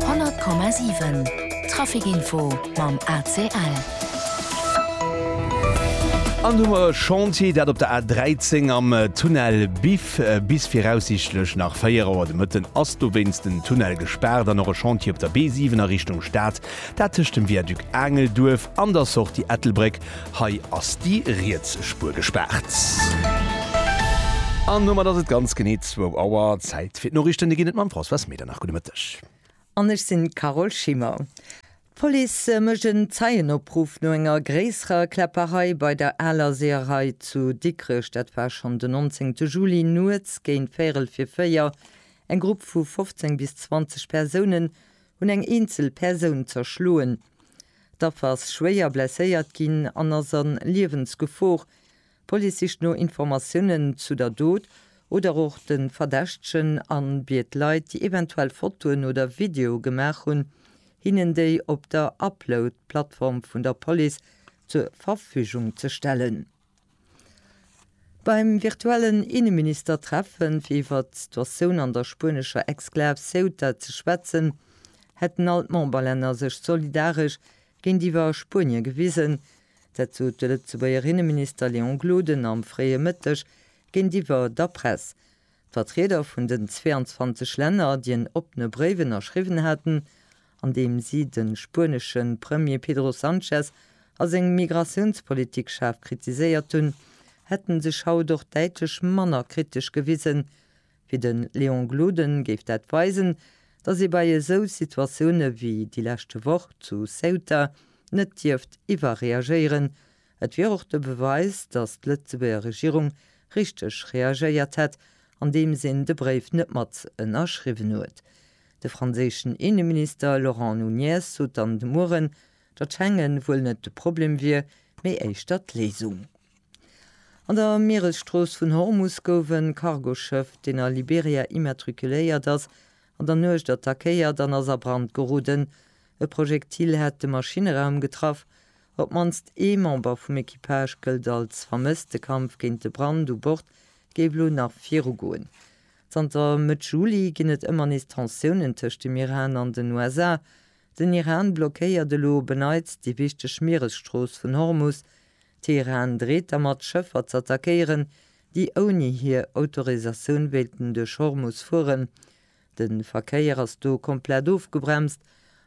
100,7 Trafic Info mam ACL. An hu mer e Chantier, dat op der A 13 am Tunnel Biff. Bis viraussiichtlech nach 4 Auer de Mëtten ass dowéinst den Tunnel gespaart. An och e Chantier op der B 7 a Richtung Stad, dat tëscht dem Viaduc Aangelduerf an der Sortie Ettelbréck. Hei ass déi riets Spuer gespaart. An domat ass et ganz genee zwou Auer. Zäit fir d'Noriichten. Déi ginn et mam Françoise Medernach. Gudde Mëtteg. An ech sinn d'Carole Schimmer. D'Police mécht en Zeienopruff no enger gréisserer Kläpperei bei der Aler Seeërei zu Dikrech. Dat war schonn den 19 te Juli nuets géint véierel fir véier. Eng Grupp vu 15 bis 20 Persounen hunn eng eenzel Persoun zerschloen. D'Affer ass schwéier blesséiert ginn an ass a Liewensgefor. D'Police sicht no Informatiounen zu der Dot oder och de Verdächtegen a biet Leit, déi eventuell Fotoen oder Videoe gemaach hunn, hinnen déi op der Upload-Plattform vun der Police zur Verfügung ze stellen. Beim virtuellen Inneministertreffen, fir iwwert d'Situatioun an der spuenescher Exklav Ceuta ze schwätzen, hätten all d'Memberlänner sech solidaresch géintiwwer Spuenie gewisen. Dat sot de Lëtzebuerger Inneminister Léon Gloden am fréie Mëtteg géintiwwer der Press. D'Vertrieder vun den 22 Länner, déi en oppene Bréif ënnerschriwwen haten, an deem si de spuenesche Premier Pedro Sanchez a seng Migratiounspolitik schaarf kritiséiert hunn, hätte sech haut och däitlech manner kritesch gewisen. Fir de Léon Gloden géif dat weisen, datt ee bei esou Situatioune wéi déi leschte Woch zu Ceuta net dierft iwwerreagéieren. Et wier och de Beweis, datt d'Lëtzebuerger Regierung richteg reagéiert hätt, andeems een de Bréif net mat ënnerschriwwen huet. De franséischen Inneminister Laurent Nunez sot dann de Mueren, datt Schengen wuel net de Problem wier, mee éischter d'Léisung. An der Mieresstrooss vun Hormus gouf e Cargoschëff, deen a Liberia immatrikuléiert ass, an der Nuecht attackéiert an ass a Brand geroden. E Projektil hat de Maschineraum getraff. Op d'mannst ee Member vum Equipage gëllt als vermësst. De Kampf géint de Brand u Bord géif elo nach virugoen. Zanter Mëtt Juli ginn et ëmmer nees Tensiounen tëscht dem Iran an den USA. Den Iran blockéiert elo op en Neits déi wichteg Mieresstrooss vun Hormus. Teheran dreet dermat, Schëffer z'attackéieren, déi ouni hir Autorisatioun wéilten duerch Hormus fueren. De Verkéier ass do komplett ofgebremst.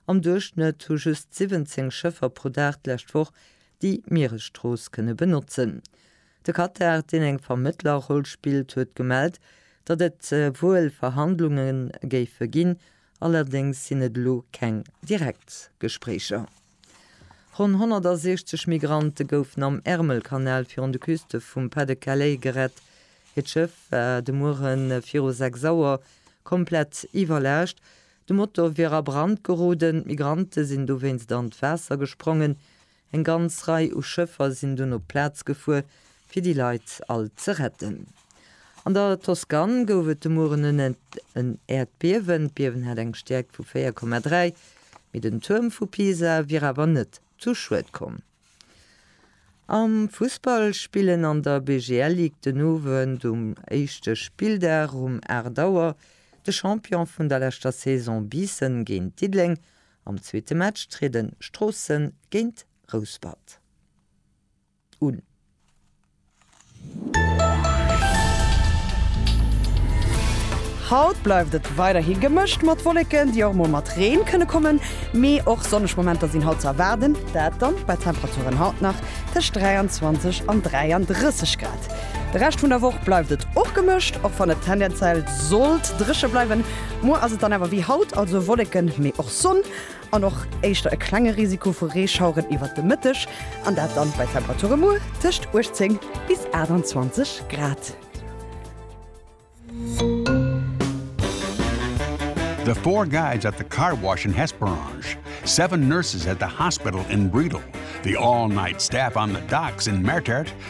Am Duerchschnëtt hu just 17 Schëffer pro Dag d'lescht Woch déi Mieresstrooss kënne benotzen. De Katar, deen eng Vermëttlerroll spillt, huet gemellt, datt et wuel Verhandlunge géife ginn, allerdéngs sinn et elo keng direkt Gespréicher. Ronn 160 Migrante goufen am Ärmelkanal virun de Küste vum Pas-de-Calais gerett. Hiert Schëff war de Muere viru 6 Auer komplett iwwerlaascht. De Motor wier a Brand geroden. D'Migrante sinn dowéinst an d'Waasser gesprongen. Eng ganz Rei u Schëffer sinn dunn op d'Plaz gefuer, fir déi Leit all ze retten. An der Toscane gouf et de Mueren un en Äerdbiewen. D'Biewen hat eng Stäerkt vu 4,3, mee den Tuerm vu Pisa wier awer net zu Schued komm. Am Fussball spillen an der BGL Ligue den Owend um éischte Spilldag um 8 Auer de Champion vun der leschter Saison Biissen géint Diddeleng Am zweete Match trieden Stroossen géint Rouspert un. Haut bleift et weiderhi gemëscht mat Wolleken, déi och mol mat Reen kënne kommen, mee och sonneg Momenter sinn haut ze erwaarden, dat dann bei Temperaturen haut nach tëscht 23 an 33 Grad. De Rescht vun der Woch bleift et och gemëscht, och wann et tendenziell sollt dréche bleiwen. Muer ass et dann awer wéi haut, also Wolleken, mee och Sonn an och éischter e klenge Risiko vu Reeschaueren iwwert de Mëtteg an dat dann bei Temperature muer tëscht 18 bis 28 Grad. The four guys at the car wash in Hesperange, seven nurses at the hospital in Bredal, the all-night staff on the docks in Mertert,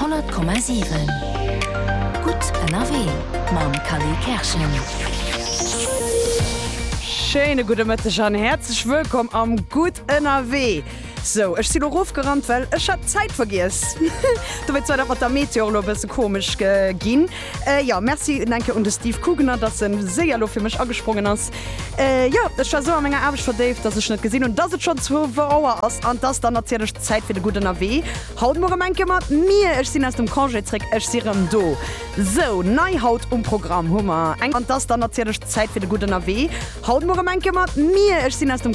100,7 Gutt ënnerwee mam Kally Kerschen. Schéine gudde Mëtteg an häerzlech wëllkomm am Gutt ënnerwee. Sou, ech si lo rofgerannt, well ech hat d'Zäit vergiess. Dobäi zwar, dat mat der Meteo och lo e bësse komesch ginn. Jo, merci un eng Kéier un de Steve Kugener, dass en séier elo fir mech agesprongen ass. Jo, ech war esou a menger Aarbecht verdéift, dass ech net gesinn hunn, dass et schonn 12 Auer ass an dass dann natierlech d'Zäit fir de Gutt ënnerwee. Haut muer erëm eng Kéier mat mir. Ech sinn aus dem Congé zréck, ech si erëm do. Sou, nei haut um Programm hu mer eng an dass dann natierlech d'Zäit fir de Gutt ënnerwee. Haut muer erëm eng Kéier mat mir. Ech sinn aus dem.